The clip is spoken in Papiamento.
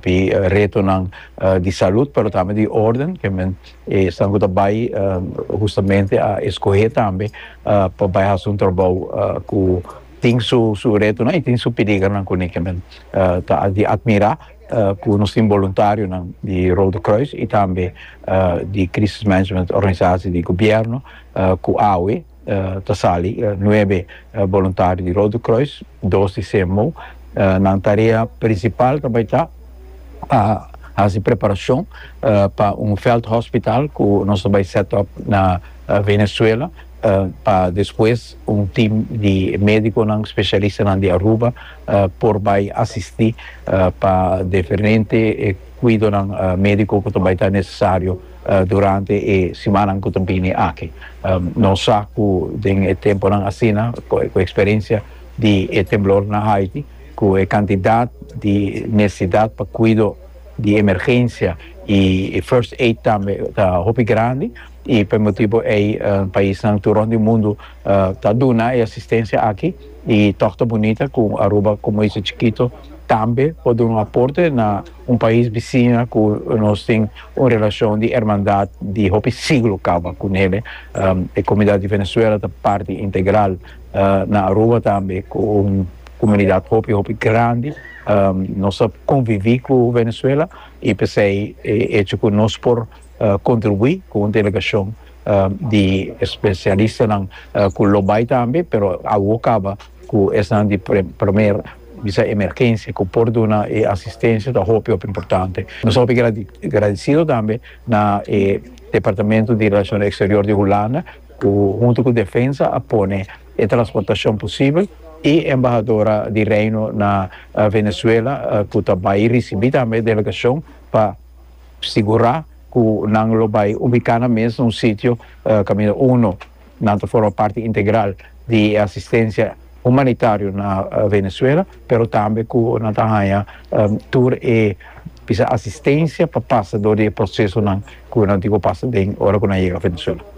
di retonan di salud pero tambe di orden ke men esnan ku ta bai hustamente a eskohe tambe pa bai hasi un trabou ku tin su su retonan i tin su piligernan kuné ke men ta di atmirá ku nos tin boluntarionan di Rode Kruis i tambe di Krisis Management Organisasi di Gobièrnu ku awe. Ta sali nuebe boluntario di Rode Kruis, dos di CMO. Nan tarea prinsipal ta bai ta pa hasi preparashon pa un vèldhospitaal ku nos ta bai sèt òp na Venezuela, pa despues un tim di médikonan spesialistanan di Aruba por bai asistí pa diferente kuidonan médiko ku ta bai ta nesesario. Durante e simannan ku ta bini aki nos sa ku den e tempunan asina ku e eksperensia di e temblor na Haiti ku e kantidat di nesesidat pa kuido di emergensia i first aid tambe ta hopi grandi i pa e motibu ei paisnan tur rònt di mundu ta duna e asistensia aki i tòg ta bunita ku Aruba komo isla chikito tambe por duna un aporte na Un pais bicina cu nos tin un relacion di hermandad di hopi siglo caba cu nele. E comunidad di Venezuela ta parti integral na Aruba tambe cu un comunidad hopi hopi grandi. Nos a convivi cu Venezuela y p'esey e hecho cu nos por kontribuí ku un delegashon di spesialistanan ku lo bai tambe pero awo kaba ku esnan di primer bisa emergensia ku por duna e asistensia ta hopi hopi importante nos ta hopi gradisido tambe na e departamento di relashon eksterior di Hulanda ku huntu ku defensa a pone e transportashon posibel i embahadora di Reino na Venezuela ku ta bai risibí tambe e delegashon pa Sigurá ku nan lo bai ubiká nan mes na un sitio kaminda uno nan ta forma parti integral di e asistensia humanitario na Venezuela, pero tambe ku nan ta haña tur e bisa asistensia pa pasa dor di e prosesonan ku nan tin ku pasa den ora ku nan yega Venezuela.